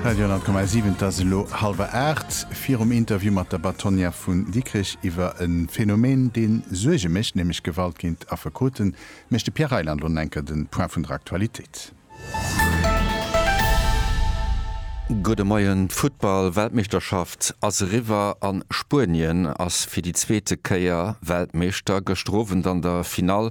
Radio 10,7, et ass elo hallwer aacht. Virum Interview mat der Bâtonnière vun Dikrech iwwer e Phänomen, dee Suerge mécht, nämlech Gewalt géint Affekoten, mécht de Pierre Reyland elo enker de Point vun der Aktualitéit. Gudde Moien. D'Futtball-Weltmeeschterschaft ass eriwwer an Spuenien ass fir déi zweete Kéier Weltmeeschter. Gëschter Owend an der Finall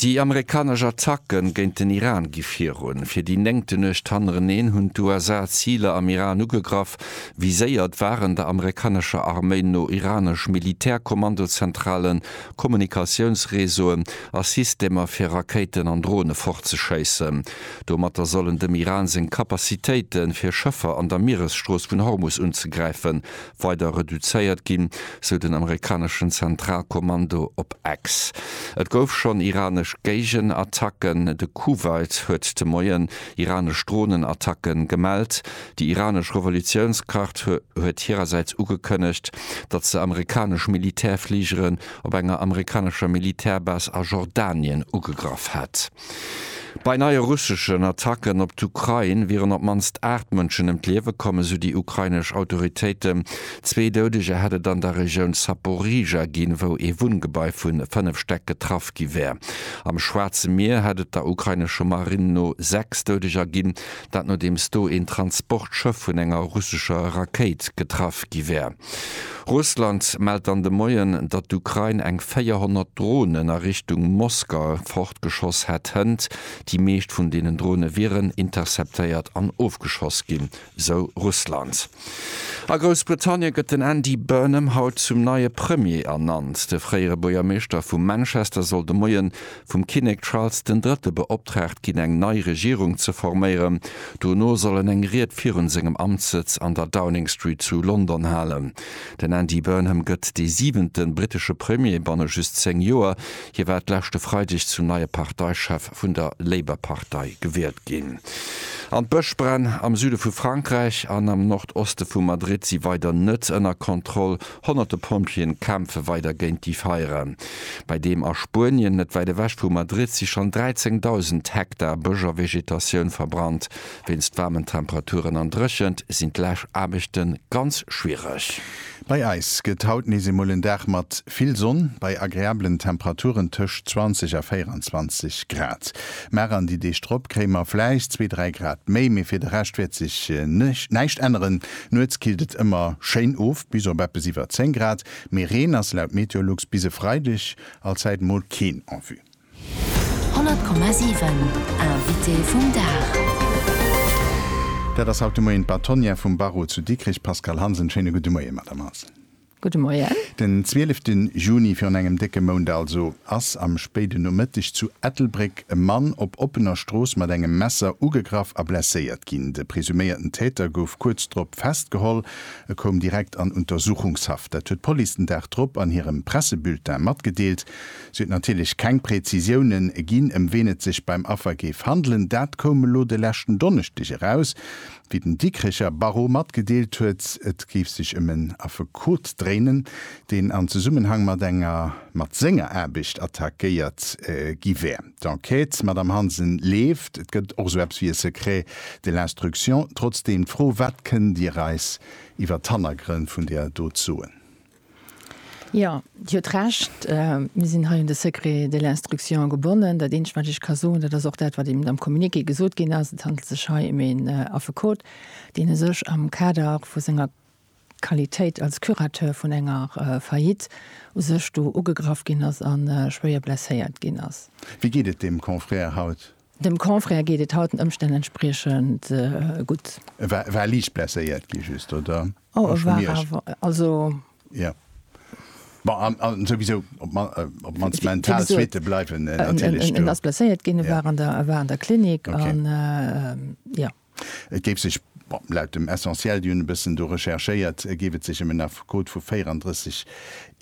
Déi amerikanesch Attacke géint den Iran gi virun. Fir déi néngte Nuecht hannereneen hunn d'USA Ziler am Iran ugegraff. Viséiert waren der amerikanescher Arméi no iranesch Militärkommandozentralen, Kommunikatiounsreseauen a Systemer fir Rakéiten an Drone fortzeschéissen. Domatter sollen dem Iran seng Capacitéite fir Schëffer an der Mieresstrooss vun Hormus unzegräifen, weider reduzéiert ginn, sou den amerikaneschen Zentralkommando op X. Et gouf schonn iranesch Géigenattacken. De Kuwait huet de Moien iranesch Dronenattacke gemellt. Déi iranesch Revolutiounsgard huet hirersäits ugekënnegt, datt se amerikanesch Militärfligeren op enger amerikanescher Militärbase a Jordanien ugegraff hätt. Bei neie russeschen Attacken op d'Ukrain wieren op d'mannst 8 Mënschen ëm d'Liewe komm, esou déi ukrainesch Autoritéiten. Zwee Doudeger hätt et an der Regioun Zaporizhzhia ginn, wou ee Wunngebai vu 5 Stäck getraff gi wär. Am Schwaarze Mier hätt et der ukrainesche Marinn no 6 Doudeger ginn, dat nodeems do een Transportschëff vun enger russescher Rakéit getraff gi wär. Russland mellt dann de Moien, datt d'Ukrain eng 400 Dronen a Richtung Moskau fortgeschoss hätt hënt. Déi meescht vun deenen Drone wieren interceptéiert an ofgeschoss ginn, sou Russland. A Groussbritannien gëtt den Andy Burnham haut zum neie Premier ernannt. De fréiere Buergermeeschter vu Manchester soll de Moien vum Kinnek Charles den Drëtte beoptraagt ginn eng nei Regierung ze forméieren. Dono soll en eng Ried virun sengem Amtssëtz an der Downing Street zu London halen. Den Andy Burnham gëtt dee siwente brittesche Premier banne just 10 Joer. Hie war d'leschte Freideg zum neie Parteichef vun der Labour-Partei gewielt ginn. An d'Bëschbränn am Süde vu Frankräich an am Nordoste vu Madrid si weider net ënner Kontroll. Honnerte Pompjeeën kämpfe weider géint déi Feiere. Bei deem a Spuenien, net wäit ewech vu Madrid, si schonn 13.000 Hektar Bësch a Vegetatioun verbrannt. Wéinst waarmen Temperaturen an Dréchent sinn d'Läschaarbechte ganz schwiereg. Bei eis gëtt haut nees eemol en Dag mat vill Sonn, bei agreablen Temperaturen tëscht 20 a 24 Grad. Mar an déi Deeg drop kréie mer vläicht zwee, dräi Grad méi, mee fir de Rescht wäert sech näischt änneren. Nuets killt et ëmmer schéin of bis op eppes iwwer 10 Grad, mee Reen ass laut Meteolux bis e Freideg allzäit mol keen en vue. 100,7 Invité vum Dag. Dat ass haut de Moien d'Bâtonnière vum Barreau zu Dikrech, Pascale Hansen. Schéine gudde Moie, Madame Hansen. Gudde Moien. Den zwielefte Juni, virun engem décke Mount also, ass am spéiden Nomëtteg zu Ettelbréck e Mann op oppener Strooss mat engem Messer ugegraff a blesséiert ginn. De presuméierten Täter gouf kuerz drop festgeholl. E koum direkt an Untersuchungshaft. Dat huet d'Police den Dag drop an hirem Pressebulletin matgedeelt. Si huet natierlech keng Präzisioune ginn, ëm ween et sech beim Affer géif handelen. Dat koum elo de leschten Donneschdeg eraus. Wéi den Dikricher Barreau matgedeelt huet, et géif sech ëm en Affekot dréinen, deen an Zesummenhang mat enger mat senger Aarbecht attackéiert gi wär. D'Enquête, Madame Hansen, leeft. Et gëtt och esou eppes wéi e Secret de l'instruction. Trotzdeem d'Fro, Wat kënnt Dir eis iwwer d'Hannergrënn vun där Dot soen? Jo, Dir hutt Recht. Mir sinn hei un de Secret de l'instruction gebonnen. Dat Eenzegt, wat ech ka soen, dat ass och dat, wat eben am Communiqué gesot ginn ass, Et handelt sech hei ëm een Affekot, deen e sech am Kader vu senger Qualitéit als Curateur vun enger Faillite u sech do ugegraff ginn ass a schwéier blesséiert ginn ass. Wéi geet et deem Confrère haut? Dem Confrère geet et haut den Ëmstänn entspriechend gutt. E war liicht blesséiert gi just, oder? Oh, e war awer, also. Jo. Bon, an souwisou, op d'mannst mental Suitte bleiwen natierlech do. En ass blesséiert ginn, e war an der Klinik an jo. Et géif sech, bon, laut dem Essentiel, déi hunn e bëssen do recherchéiert, géif et sech ëm en Affekot vu 34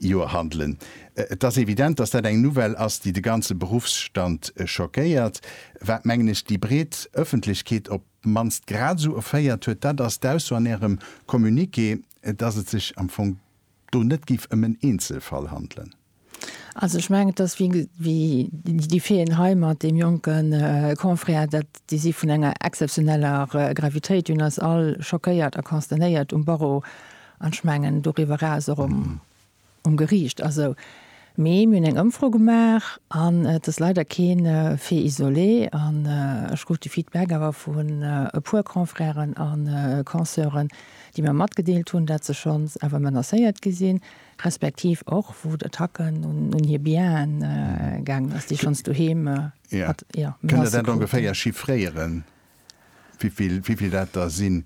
Joer handelen. Et ass evident, datt dat eng Nouvelle ass, déi de ganze Beruffsstand schockéiert, wat, mengen ech, déi breet Ëffentlechkeet op d'mannst grad esou erféiert huet, dat ass d'Ausso an Ärem Communiqué, datt et sech am Fong do net géif ëm en Eenzelfall handelen. Also ech mengen, et ass wéi ge-, wéi déi Feen hei mat deem jonke Confrère, dat, déi si vun enger exzeptioneller Gravitéit, un eis all schockéiert a consternéiert um Barreau an, ech mengen, doriwwer eraus och um, um Geriicht. Also, mee mir hunn eng Ëmfro gemaach an et ass leider kee Fait isolé an ech krut de Feedback awer vun e puer Confrèren a Conseuren, déi mir matgedeelt hunn, dat se schonns awer menacéiert gi sinn, Respektiv och wou d'Attacken un hir Bienen gaangen ass, déi schonns doheem mat Menacë kruten. Kënnt Der dat ongeféier chiffréieren, wéivill dat der sinn?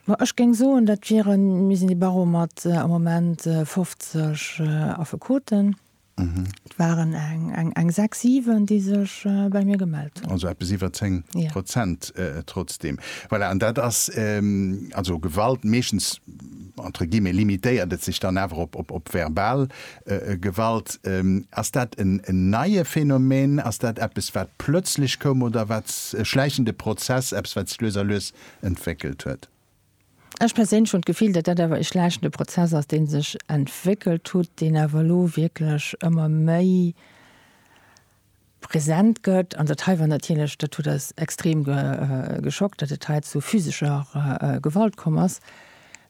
Ma ech géing soen, dat wieren, mir sinn de Barreau mat am Moment 50 Affekoten, et waren eng sechs, siwen, déi sech bei mir gemellt hunn. Also eppes iwwer 10 Prozent trotzdeem. Voilà, an dat ass also Gewalt meeschtens entre guillemets, limitéiert et sech dann awer op verbal Gewalt. Ass dat en neie Phänomen? Ass dat eppes, wat plötzlech koum oder wat e schläichende Prozess, eppes, wat sech lues a lues entwéckelt huet? Ech perséinlech hunn d'Gefill, datt dat awer e schläichende Prozess ass, dee sech entwéckelt hutt, deen awer elo wierklech ëmmer méi, present gëtt. An dat hei war natierlech, dat huet eis extrem geschockt, datt et hei zu physescher Gewalt komm ass.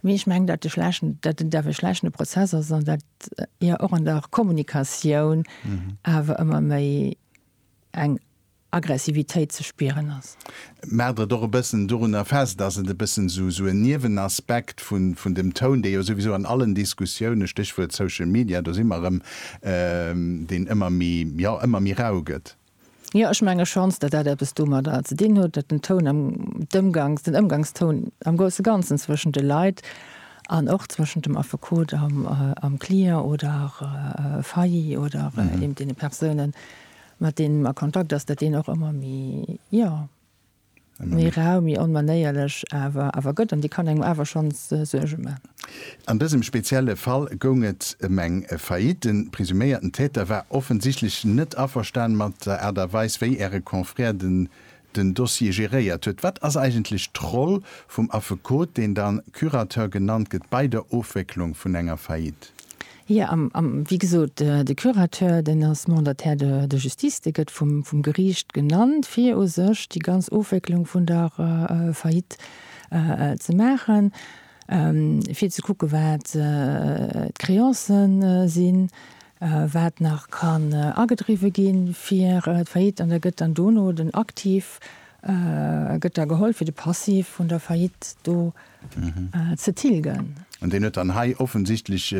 Mee ech mengen, datt de schlechten, datt en daf e schlechtene Prozess ass an datt jo och an der Kommunikatioun awer ëmmer méi eng Aggressivitéit ze spieren ass. Maacht et och e bëssen dorunner fest, dass et e bëssen esou en Niewenaspekt vun dem Toun, dee jo souwisou an allen Diskussioune, Stéchwuert Social Media, do si mer erëm, deen ëmmer méi, jo, ëmmer méi rau gëtt. Jo, ech menge schonns, datt dat eppes domadder ze dinn huet, datt den Toun, d'Ëmgangs, den Ëmgangstoun am grousse Ganzen zwëschent de Leit an och zwëschent dem Affekot am Client oder Failli oder eben deene Persounen, mat deem en a Kontakt ass, datt deen och ëmmer méi, jo, méi rau, méi onmanéierlech awer awer gëtt an déi kann engem awer schonns Suerge maachen. An dësem spezielle Fall goung et ëm eng Faillite. De presuméierten Täter war offensichtlech net averstan mat der Aart a Weis, wéi Äre Confrère de den Dossier geréiert huet. Wat ass eigentlech d'Roll vum Affekot, deen da Curateur genannt gëtt, bei der Ofwécklung vun enger Faillite? Jo, wéi gesot, de Curateur, deen ass Mandataire de la justice, dee gëtt vum Geriicht genannt, fir u sech déi ganz Ofwécklung vun der Faillite ze maachen. fir ze kucke wat d'Créancen sinn, wat nach kann agedriwwe gi fir d'Faillite, an da gëtt dann dono den Aktiv gëtt da geholl fir de Passiv vun der Faillite do ze tilgen. An deen huet dann hei offensichtlech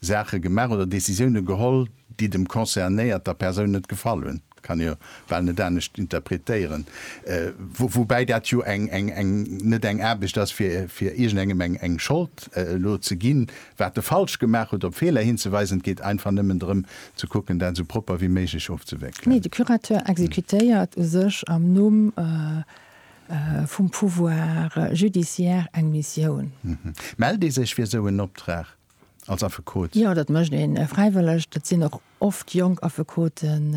Saache gemaach oder Décisioune geholl, déi dem concernéierter Persoun net gefall hunn. Dat kann ee bal net anescht interpretéieren. Woubäi dat jo net eng Aarbecht ass, fir iergendengem eng Schold elo ze ginn, wat e falsch gemaach huet, op Feeler hinzeweisen. Et geet einfach nëmmen drëm, ze kucken, dat esou propper wéi méiglech ofzewéckelen. Nee, de Curateur exekutéiert u sech am Numm vum Pouvoir judiciaire eng Missioun. Mellt ee sech fir esou en Optrag? als Affekot? Jo, dat mécht ee fräiwëlleg. Dat sinn och oft jonk Affekoten,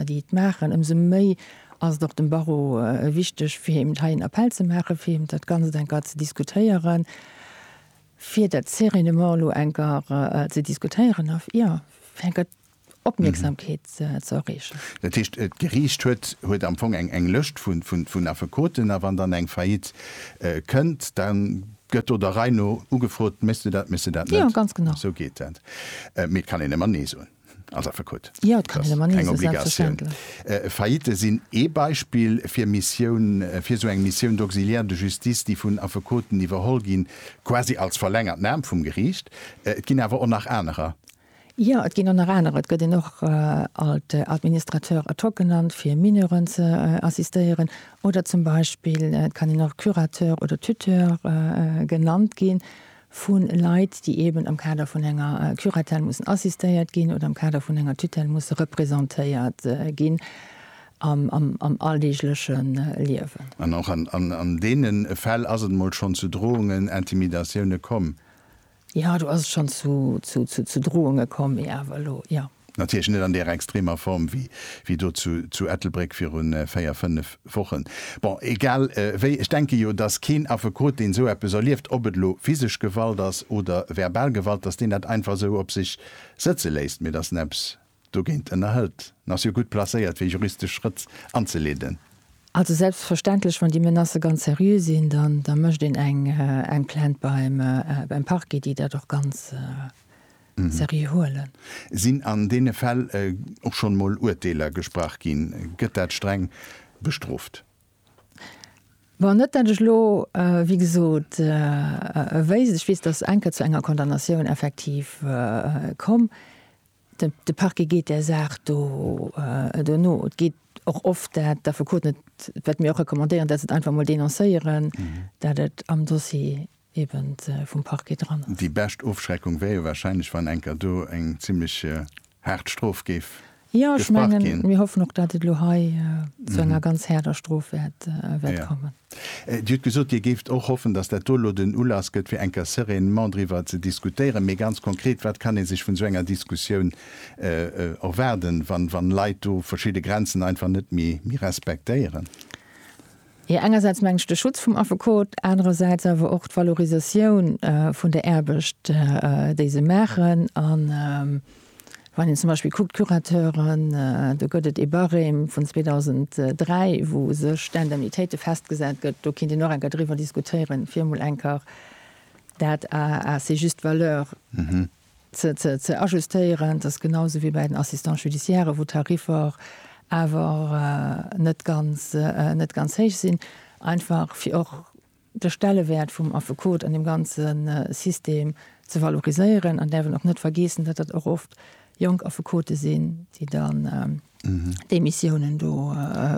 déi et maachen. Ëmsou méi ass et och dem Barreau wichteg, fir eben hei en Appell ze maachen, fir eben dat Ganzt eng Kéier ze diskutéieren, fir dat sereinement elo eng Kéier ze diskutéieren a jo, fir eng Kéier Opmierksamkeet ze erreechen. Dat heescht, d'Geriicht huet am Fong eng Lëscht vun Affekoten a wann dann eng Faillite kënnt, da gëtt do der Rei no ugefrot, Méchs du dat, méchs du dat net? Jo, ganz genau. Esou geet dat. Mee et kann een ëmmer Nee soen als Affekot. Jo, et kann een ëmmer Nee soen, selbstverständlech. Faillitë sinn ee Beispill fir Missioun, fir esou eng Mission d'auxiliaire de justice, déi vun Affekoten iwwerholl ginn, quasi als verlängert Aarm vum Geriicht. Et ginn awer och nach anerer. Jo, et ginn och nach anerer. Et gëtt een och alt Administrateur ad hoc genannt, fir Mineuren ze assistéieren. Oder zum Beispill et kann een och Curateur oder Tuteur genannt ginn, vu Leit, déi eeben am Kader vun enger Curatelle mussen assistéiert ginn oder am Kader vun enger Tutelle musse representéiert ginn am alldeegleche Liewen. An och an deene Fäll ass et emol schonn zu Drohungen, Intimidatioune komm. Jo, do ass et schonn zu Drohunge komm, mee awer elo, jo. Natierlech net an där extremer Form wéi do zu Ettelbréck viru véier, fënnef Wochen. Bon, egal wéi, ech denke jo, dass keen Affekot, deen esou eppes erlieft, ob et elo physesch Gewalt ass oder verbal Gewalt, dass deen dat einfach esou op sech sëtze léisst, mee dass en eppes Dogéint ënnerhëlt, an ass jo gutt placéiert fir juristesch Schrëtt anzeleeden. Also selbstverständlech, wann déi Menacë ganz seriö sinn, da mécht een eng Plainte beim Parquet, déi dat och ganz seriö huelen. Sinn an deene Fäll och schonn emol Urteeler gesprach ginn? Gëtt dat streng bestrooft? Bon, net dat ech elo, wéi gesot, wéisst. Ech weess, datt eng Kéier zu enger Condamnatioun effektiv komm. De Parquet geet där Saach do no. Et geet och oft, dat d'Affekoten, et wat mir och recommandéieren, dat se et einfach emol denoncéieren, dat et am Dossier eben vum Parquet dran ass. Déi bescht Ofschreckung wär jo warscheinlech, wann enker do eng zimlech haart Strof géif gesprach ginn. Jo, ech mengen, mir hoffen och, dat et elo hei zu enger ganz haarder Strof wäert kommen. Dir hutt gesot, Dir géift och hoffen, datt dat do elo den Ulass gëtt, fir eng Kéier sereinement driwwer ze diskutéieren. Mee ganz konkret, wat kann ee sech vun esou enger Diskussioun erwaarden, wann Leit do verschidde Grenzen einfach net méi respektéieren? Jo, engersäits mengen ech de Schutz vum Affekot, anerersäits awer och d'Valorisatioun vun der Aarbecht, déi se maachen. Wann een zum Beispill kuckt, d'Curateuren, do gëtt et ee Barème vun 2003, wou sech d'Indemnitéite festgesat gëtt. Do kéint een och eng Kéier driwwer diskutéieren, fir emol eng Kéier dat à ses justes valeurs ze ajustéieren. Dat ass genau sou wéi bei den Assistants judiciaires, wou d'Tariffer awer net ganz héich sinn, einfach fir och, de Stellewäert vum Affekot an dem ganze System ze valoriséieren an däerfen och net vergeessen, datt dat och oft jonk Affekote sinn, déi dann déi Missiounen do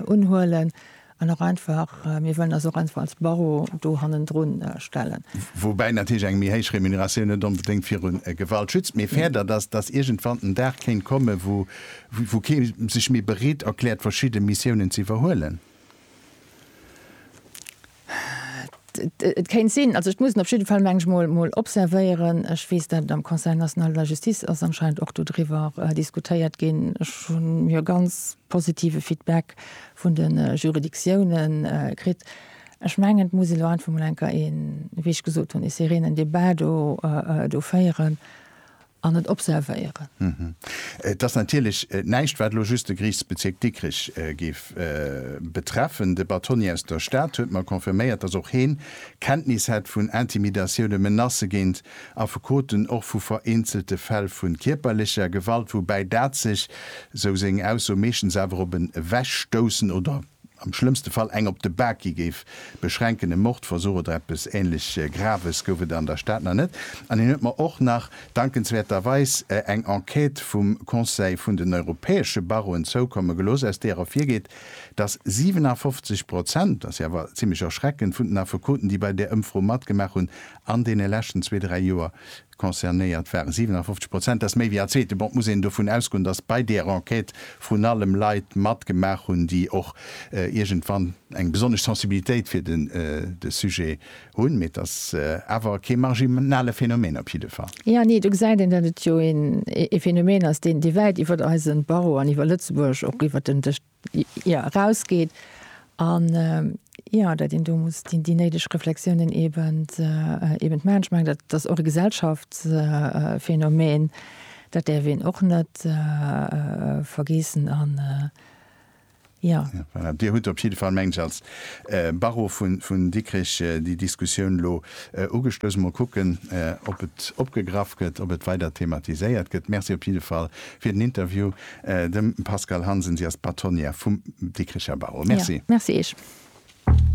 unhuelen an och einfach, mir wëllen eis och einfach als Barreau do hannendrun stellen. Woubäi natierlech eng méi héich Remuneratioun net onbedéngt viru Gewalt schützt, mee férdert, datt datt iergendwann den Dag kéint kommen, wou kee sech méi bereet erkläert, verschidde Missiounen ze iwwerhuelen. Et kéint sinn, also ech muss en op jidde Fall, meng ech, mol observéieren. Ech weess, datt et am Conseil national de la justice ass anscheinend och dodriwwer diskutéiert ginn. Ech hunn jo ganz positive Feedback vun de Juridictioune kritt. Ech mengen, et muss een elo einfach mol enker een, wéi ech gesot hunn, e sereenen Debat do féieren. an et observéieren. Et ass natierlech näischt, wat elo just de Geriichtsbezierk Dikrech géif betreffen. De Batoni aus der Stad huet mer confirméiert, datt och heen Kenntnis hätt vun Intimidatioune, Menacë géint Affekoten, och vu vereenzelte Fäll vu kierperlecher Gewalt, woubäi dat sech, sou seng Ausso, meeschtens awer op en Ewechstoussen oder am schlëmmste Fall eng op de Bak gi géif, beschränken. E Mordversuch oder eppes ähnlech Graves gouf et an der Stad nach net. An hien huet mer och nach dankenswäerterweis eng Enquête vum Conseil vun den europäesche Barreauen zoukomme gelooss, aus deer ervirgeet, dass 57 Prozent, dat ass jo awer zimlech erschreckend, vun den Affekoten, déi bei där Ëmfro matgemaach hunn an deene leschten zwee, dräi Joer, Concernéiert ware 57 Prozent, dat ass méi wéi all Zweeten. Bon, et muss een dovun ausgoen, dass bei deer Enquête vrun allem Leit matgemaach hunn, déi och iergendwann eng besonnesch Sensibilitéit fir de Sujet hunn. Mee et ass awer kee marginale Phänomen op jidde Fall. Jo, nee, do gesäit een, datt et jo ee Phänomen ass, deen, dee wäit iwwert eise Barreau an iwwer Lëtzebuerg och iwwert den Dësch. jo erausgeet an jo dat een do muss déi néideg Reflexiounen eben eben maachen. Ech mengen dat ass och e Gesellschaftsphänomen, dat däerf een och net vergeessen an jo. Voilà, Dir hutt op jidde Fall, mengen ech, als Barreau vun Dikrech déi Diskussioun elo ugestouss. Mol kucken, ob et opgegraff gëtt, ob et weider thematiséiert gëtt. Merci op jidde Fall fir den Interview. Dem Pascale Hansen, si ass Bâtonnière vum Dikricher Barreau. Merci. Merci eech.